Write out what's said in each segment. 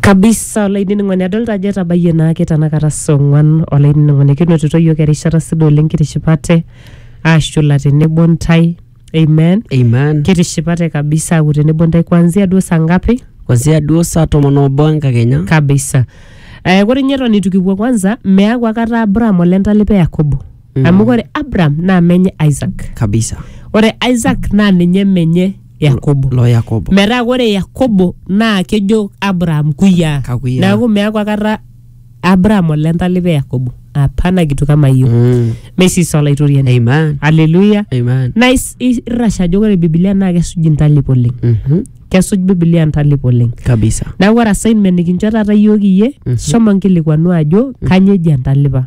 kabisa olainining'oni adolta ajo etabayie naake tanakata saa ong'uan olainining'oni kinotito yiok erishata sidai oleng kitishipate ashula tenebo ntae amen amen kitishipate kabisa aku tenebo ntae kuanzia duo saa ngapi kwanzia duo saa tomon obo enkakenya kabisa eh, ore ninye eton itu kipuo kwanza meaku akata abraham olentalipa yakobo amu kore abraham naa menye isaac kabisa ore isaac naa ninye menye yakobo lo yakobo metaa ore yakobo naa kejo abraham kuyiaa Kakuyiaa. neaku meaku akata abraham ole ntalipa e yakobo apana kitu kama hiyo Mm. meisisa olaitoriani amen aleluya amen naa is- is- irrasha ajo ore bibilia naa kesuj intalip oleng Mhm. kesuj bibilia intalip oleng kabisa neaku ore assignment nikincho taata iyiook iyie shomo nkilikuanu ajo kanyoo eji entalipa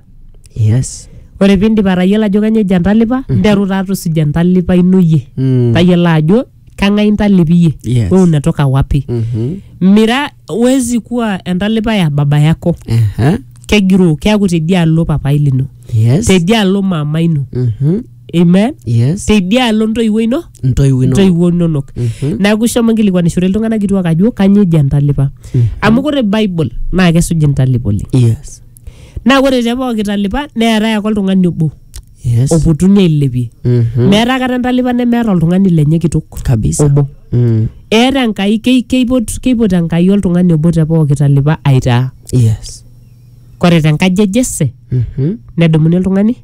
yes ore piindip atayiolo ajo kanyoo ejo entalipa nteru taa tusuja entalipa ino iyie Mm. tayiolo ajo kang'ae intalipi iyie Yes. we unatoka wapi Mhm. mira wezi kuwa entalipa ya baba yako Aha. kegiroo keaku tedialo papai lino yes tedialo mama ino Mhm. amen yes tedialo ntoiwuo ino ntoiwuo ino ntoiwuo inonok Mhm. neaku ishomo nkilikuanishore iltung'anak kituak ajo kanyoo ejo entalipa amu kore bible naa kesuj intalip oleng yes naa ore te pooki talipa neetae ake oltung'ani obo Yes. opotuni ailepie Mhm. meeta akata entalipa nemeeta oltung'ani lenye kitok Kabisa. obo Mm. eeta enkai kei- keipot keipot enkai oltung'ani obo te pooki talipa aitaa Yes. kore te nkaji e jese Mhm. nedumuni oltung'ani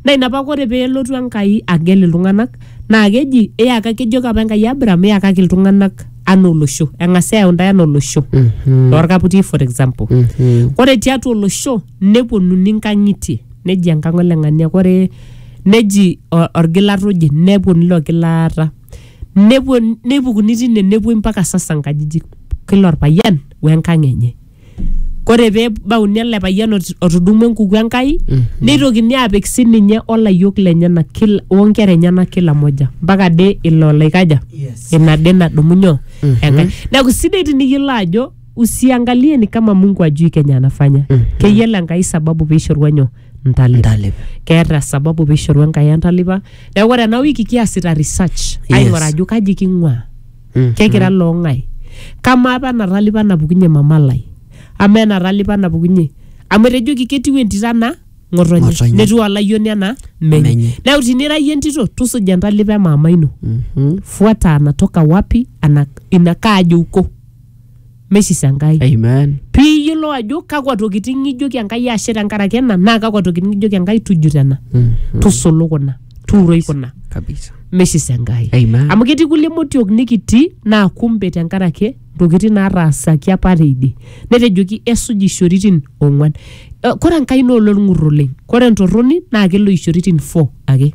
Naa ina paa ore pee elotu Enkai agel iltung'anak naa keji iyaka kejoki apa Enkai Abraham iyakaki iltung'anak anaa olosho. Eng'asi ayau intae anaa olosho toorkaputi for example. Ore tiatua olosho neponunui inkang'itie neji enkang' ole ng'ania ore neji o- orgilat oje nepuonu ilo gilata. Nepuo neipukuni tine nepuoi mpaka sasa inkajijik kila orpayian we nkang' enye. kore pebauni ele payian ot- otudumua enkuku enkai neitokini apik sininye olayiok lenyenak kila onkera enyenak kila moja mpaka ade ilo laikaja Yes. ina ade nadumu nyoo enkai neeku sidai tiniyiolo ajo usiangalie ni kama mungu ajui kenya anafanya keyiolo enkai sababu piishorua nyoo ntalipa Ntalipa. keeta sababu piishorua enkai entalipa neeku ore ena wiki kiasita research aing'ura ajo kaji king'ua Mhm. kekira loong'ae kamaa apa enatalipa napukunye mama lai ama enatalipa napukunye amu etejoki ketiu entito ana ng'otonye Ng'otonye. netiu olayioni ana menye Menye. neeku tinira iyie entito tusuja entalipa emaama ino Mhm. fuata anatoka wapi ana ina kaaji uko meisisa enkai Amen. piiyiolou ajo kakwa tokitin ng'ijoki enkai ashe tenkaraki ena naa kakwa tokitin ng'ijoki enkai tujut ena Mm. tusulu kuna tuuroi kuna Kabisa. meisisa enkai Amen. amu ketii kulie motiok nikitii naa kumbe tenkaraki ntokitin naataasaki apa teidie netejoki esuj ishoritin ong'uan Eh, kore enkai naa ololng'ur oleng kore entorroni naa kelo ishoritin four ake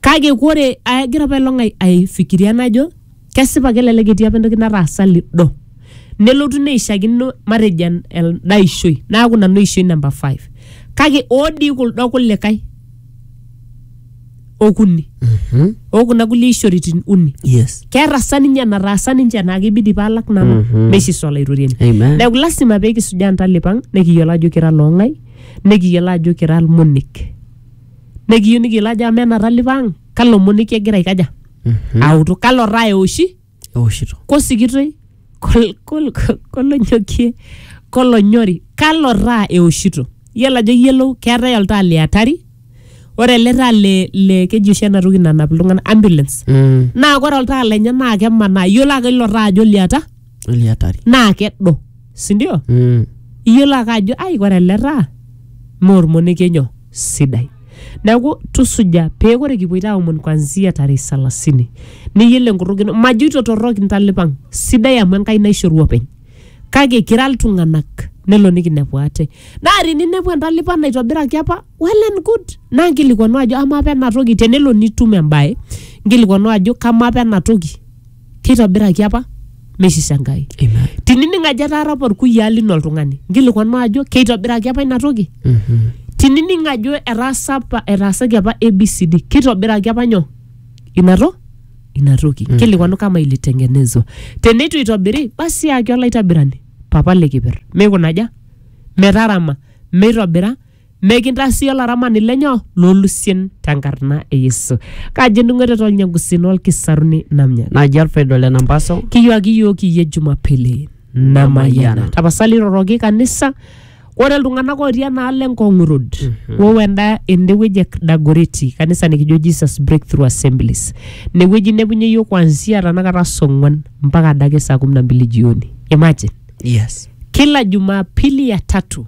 kake kore agira apailong' ai- aifikiria najo kesipa kelelek etii apa entoki nataasa lido nelotu neishakino matejo en- enda ishoi naaku nanu ishoi namba 5 kake oodii kuldo kulikae okuni Mhm. okuna kulie ishoritin uni yes keeta sa ninye enataasa ninche naa kibidi paalak nanu Mhm. meishiso olaitoriani amen neeku lasima pee kisujaa ntalipang nikiyiolo ajo kira loong'ai nikiyiolo ajo kira ilmonek nekiyieu nikiyiolo ajo amaa ena talipa ang kalo monek egira aikaja autu kalo taa eoshi eoshito kosikitoi kol- kol- kol- kolonyokie kolonyori kalo taa eoshito iyiolo ajo iyiolou keetae oltaa le atari ore ele taa le, le keji oshi ena toki nanap iltung'anak ambulance Mm. naa ore oltaa lenye naa kemanaa iyiolo ake ilo taa ajo liata Oli hatari. naa kedo sindio Mm. iyiolo ake ajo ai ore ele taa maa ormonekie nyoo sidai neeku tusuja pee ore kipuoito aomon kwanzia tarehe salasini niyiolo enkutuk ino majoito torrok intalipang sidai amu enkai naishoru openy kake kira iltung'anak nelo nikinepu ate naa tininepu entalipa naitobiraki apa well and good naa nkilikuanu ajo amaa apa ena toki tenelo nitum embaye nkilikuanu ajo kamaa apa ena toki keitobiraki apa meisisa enkai Amen. tinining ajo etaara apa orkuyiaa lino oltung'ani nkilikuanu ajo keitobiraki apa ina toki Mhm. tinining ajo etaasa apa etaasaki apa abcd keitobiraki apa nyoo ina to ina toki nkilikuanu kama ilitengenezwa teneitu itobiri basi yaki olaitabirani papa likiper meikunaja metarama meitobira Mekintaa sii olaramani lenyo loolusien tenkarna e Yesu. Kaji endung'oto tolnyangusin olkisaruni namnyani. Naji Alfredo le Nambaso. Kiyuaki iyiook iyie Jumapili namayiana. Tapasali iroroki kanisa ore iltung'anak ootii enaalo Ngong Road wou enda ende wueji e Dagoreti kanisa nikijo Jesus Breakthrough Assemblies. Ine wueji inepunye iyiook kuanzia tanakata saa ong'wan mpaka adake saa kumi na mbili jioni. Imagine. Yes. Kila Jumapili ya tatu